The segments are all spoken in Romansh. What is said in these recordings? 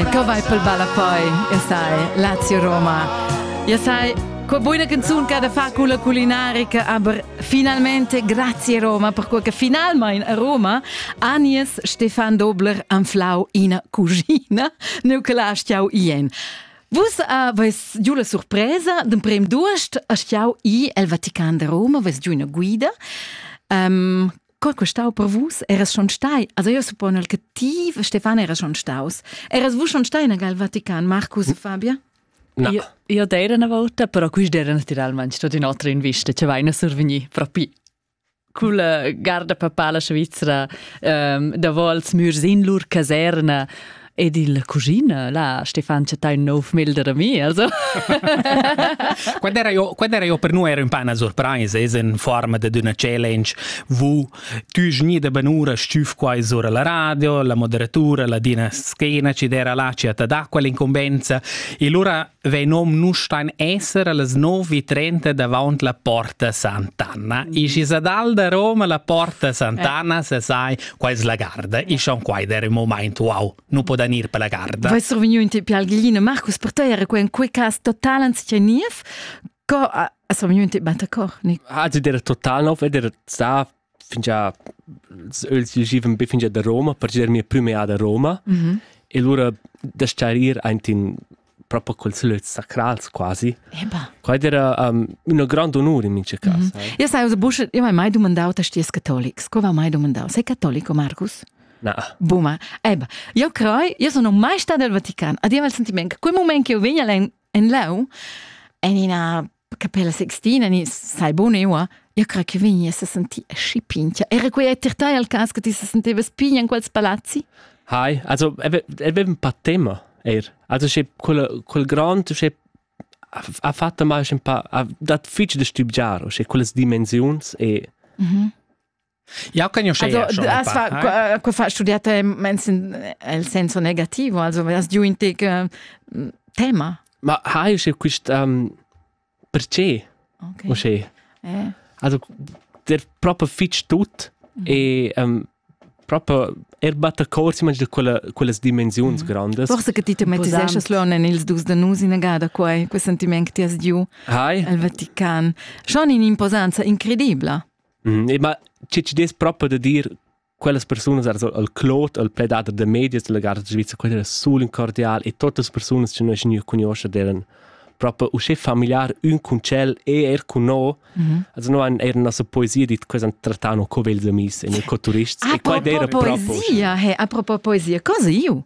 Co vai pel balapoi? Io sai, Lazio Roma. Io sai, qua buona canzun che da fa con la culinarica, aber finalmente grazie Roma, perché finalmente a Roma Agnes Stefan Dobler anflau ina cugina, neu che la stiau ien. Vus aveis giù la sorpresa d'un prem d'uost a stiau i el Vatican de Roma, aveis giù una guida. Um, Co che stau per vus eras schon stai, also io suppone che ti Stefan era schon staus. Eras vus schon stai in al Vatican, Marcus e Fabia? No. Io, io d'era una volta, però questi erano naturalmente stati un'altra invista, ci vai a survenire proprio cul garda papala svizzera um, da vols mürs in lur caserna Ed il cugina, la Stefan chattai un nov melder da mi, also. quando era io, quando era io per noi ero un po' una sorpresa, es in forma de una challenge, vu tu gni de benura stuf qua sura la radio, la moderatura, la dina schiena ci dera là ci at d'acqua l'incombenza e lura Vein om nu stan esser allas nov e trenta davant la Porta Sant'Anna. Isch is ad al da Roma la Porta Sant'Anna, se sai, qua es la garda. Isch on quai der un moment, wow, nu podan ir per la garda. Vai survegniu in te pialglina. Marcus, per te era in quei cas total anzicheniev. Co a survegniu in te battacor? Ha, der total nov, der sta fingià els givan be fingià da Roma per gir mia prüma da Roma mm e lura da star ir aint in proprio col sulöz sacrals quasi. Eba. Quai era um, üna grand onur in mincha cas. Mm -hmm. Io sai, Busch, io m'hai mai domandau te sties catolics. Come mai domandau? Sei catolico, Marcus? No. Buma. Eba. Io crei, io sono mai stata al Vatican. Adiamo il sentimento che quel momento che io vengo in lau, in una che pella sextina ni sai bun eua io cre che vegni a senti aschi pintia era quei è tir tai al cas che ti se sentevas pign in quels palazzi hai also avevem pa tema er also sche quel quel grand sche ha fatto mal un pa dat fitch de stübgiar o sche quelles dimensiuns e mhm Ja kann ich also du hast fa co fa studiata el senso negativo also hast du in te tema ma ha io quist um, perché okay. o sche eh. also der proprio fitch tut mm -hmm. e um, proprio er batta cors imagine da quella quellas dimensions mm. grandes forse che ti tematizesches lernen ils dus de nus in gada quei quei sentiment che ti has giu al Vatican schon in imposanza incredibla Mm, ma che ci des proprio da dir quellas persunas ar al Claude, al pledader de medias della Garda Svizra, quella era sul cordial e tote le persone che noi noi conosciamo erano proprio usce familiar un con cel e er con no. Mm -hmm. Also no an er nossa poesia dit cosa trattano co ils amis e noi co turists ah, e qua era proprio poesia, hey, a propos poesia, cosa io?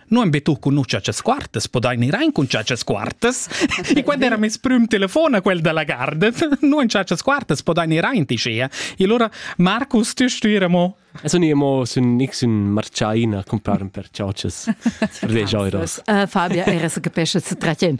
Non be tu conuscha ces quartas, podain ir ein cun ces quartas. e quando era mes prüm telefon a quel della garden, non ces quartas podain ir ein ti sia. E allora Marcus, tu stuira mo E sun io mo sun nix un marciaina comparum per ciocias per 10 euros. Uh, Fabia era se capesce se tratien.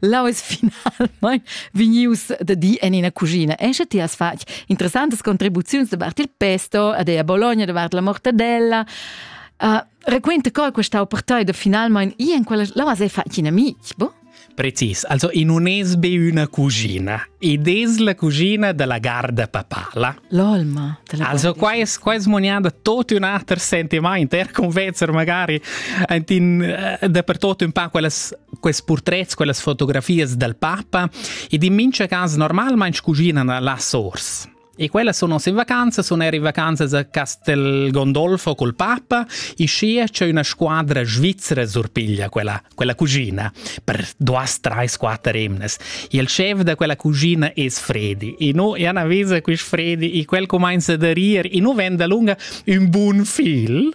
Lau es finalmein vegnius da di en ina cuschina. E sche ti has fatg interessantes contribuziuns davart il pesto ad a Bologna davart la mortadella. Uh, raquenta co questa ha portato finalmein i en quella la has fatg in amic, boh? Precis, also in un esbe una cucina ed es la cucina della garda papala. L'olma della Also qua es qua es moniada tot un ater sentiment, er convencer magari ein in eh, dapertutto un pa quellas Quels purtrets, quellas fotografias dal papa ed in mincha cas normalmaing scuginan là sors. E quelle sono in vacanze, sono eri vacanze a Castel Gondolfo col Papa, e scia c'è una squadra svizzera surpiglia quella, quella cugina, per duas, tre, quattro emnes. E il chef da quella cugina è Fredi, e no, e Anna vesa quest Fredi, e quel comincia da rir, e no vende lunga un buon fil,